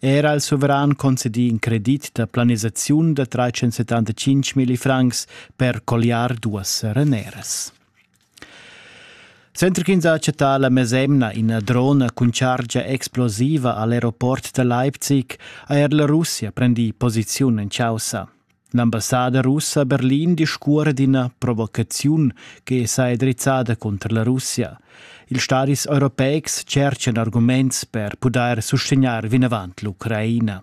Era il suveran concedì in credit da planisaziun da 375 milli francs per colliar duas sereneras. Center ch'ins ha accettà la mesemna ina drona cun chargia explosiva a l'aeroport da Leipzig ha er la Russia prendì posiziun en chaussa. L'ambassada russa a Berlin discuora d'ina provocaziun che saja drizzada cunter la Russia. Ils stadis europeics cerchan arguments per pudair sustegnair vinavant l'Ucraina.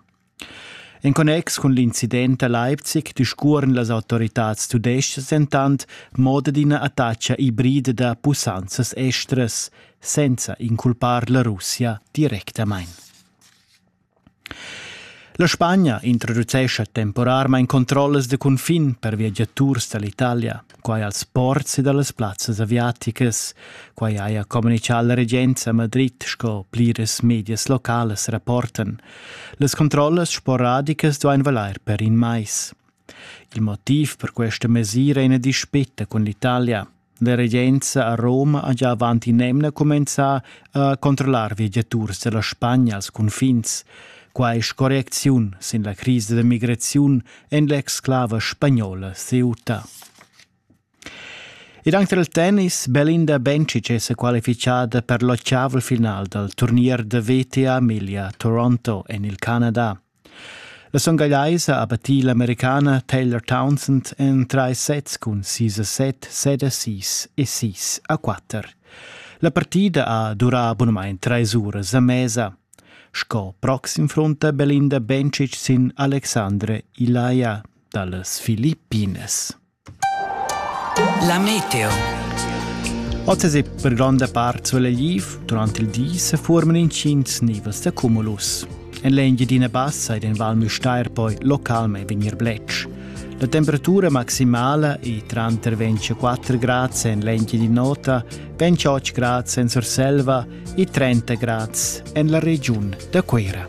En connex cun l'incident a Leipzig discuoran las autoritads tudestgas entant moda d'ina attacca ibrida da pussanzas estras, senza inculpar la Russia directamain. La Spagna introducescha temporarmain controllas da cunfin per viagiaturs da l'Italia, quai als ports ed a las plazzas aviaticas. Quai haja communitgà la regenza a Madrid sco pliras medias localas rapportan. Las controllas sporadicas duain valair per in mais. Il motiv per questa mesira è ina dispeta cun l'Italia. La regenza a Roma ha gia avant in'emna cumenzà a controllar viagiaturs da la Spagna als cunfins. Quai scorrecziun sin la crisa da migraziun en l'exclava spagnola Ceuta. Ed anche del tennis, Belinda Bencic è qualificata per l'octaval final dal turnier da VTA Emilia-Toronto en il Canada. La songalaisa ha battì l'Americana Taylor Townsend en trais sets cun sis a set, set a sis e sis a quatter. La partida ha durà bunamain trais uras a mesa. Sco proxim frunta Belinda Bencic sin Alexandre Ilaia dallas Filippines. La meteo. Oz è per gronda part sulegliv, durant il di se forman intgins nivels da cumulus. En l'Engiadina Bassa ed en Val Müstair poi localmente vegnir bletsch. La temperatura maximala è tranter 24 grad en l'Engiadina Nota, 28 grad en Surselva e 30 grad en la regiun da Cuira.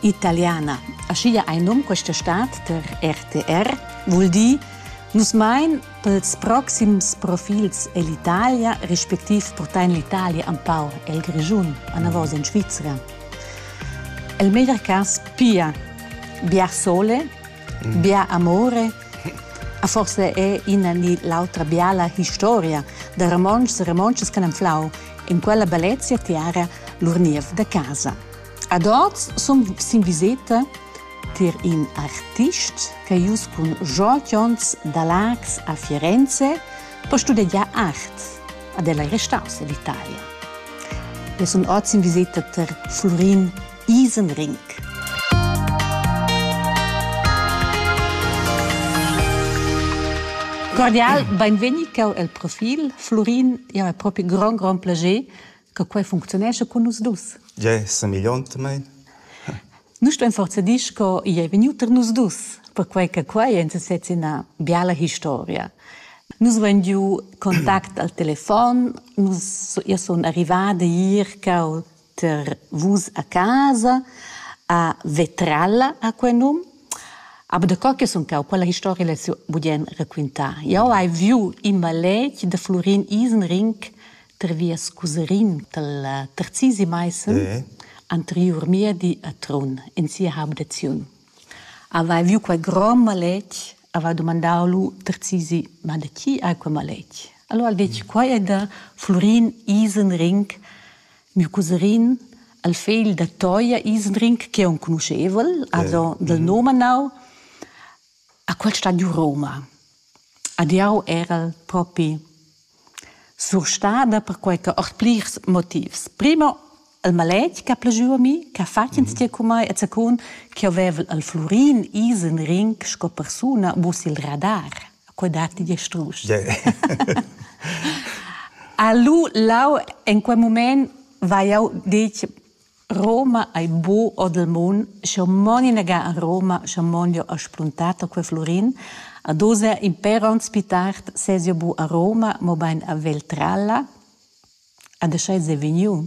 italiana. Aschia ei num questa stad per RTR vul dir Nus mein pels proxims profils ell'Italia, respektiv portain l'Italia empau el Grischun, anavos in Svizra. El meglier cas pia bia sole, mm. bia amore, a forse è ina ni l'altra biala historia da romontschs e romontschas che han flau in quella bellezia tiara lur niev da casa. Ad hoz sun sin viseta tier in artist ch'ha ius cun Georg Jons da Laax a Firenze per studegiar art. Ad el ei restaus a l'Italia. E sun oz in viseta ter Florin Isenring. Cordial, benvegni el profil. Florin, ja, è propi grand, grand plager Che quei funcziunescha cun nus dus. Jeu semigliont mei. Nus stuein forza dir sco igl ei vegniu tar nus dus, perquei che quei ein sesez ina biala historia. Nus vein giu contact al telefon, nus, io sun arrivada Irca ter vus a casa, a Vetralla ha quei num, aber da co che sun cau, quella historia l'hai budien raquintar. Jau hai viu in maletg da Florin Isenring per vias Cuserin dal terzisi Maissen eh. anteriur miedi a Trun in sia habitaziun. Aveva viu quei grom maletg, aveva domandau lu terzisi, ma da chi hai quei maletg? Allora ha detg, quai è da Florin Isenring, mio cousin, al fegl da Toia Isenring, che è un conoscevel, also dal mm. nome nau, A quel stadiu rouma. Ed jau erel propi surstada perquai che ord plirs motivs. Primo il maletg ch'ha plü a mi, ch'ha fat instie cun mai e zacun ch'jeu vevel al Flurin Isen Ring sco persuna mus il radar. Quei dat igl strusch. A lu lau en quei mument vai jau detg Roma ei buc ord il mund, sco mon inaga a Roma, sco mon jeu ha spuntato quei Flurin. Ad oz è in per onns pli tard ses jeu buc a Roma, mobein a Veltralla. Ad e sch'ei sei vegniu?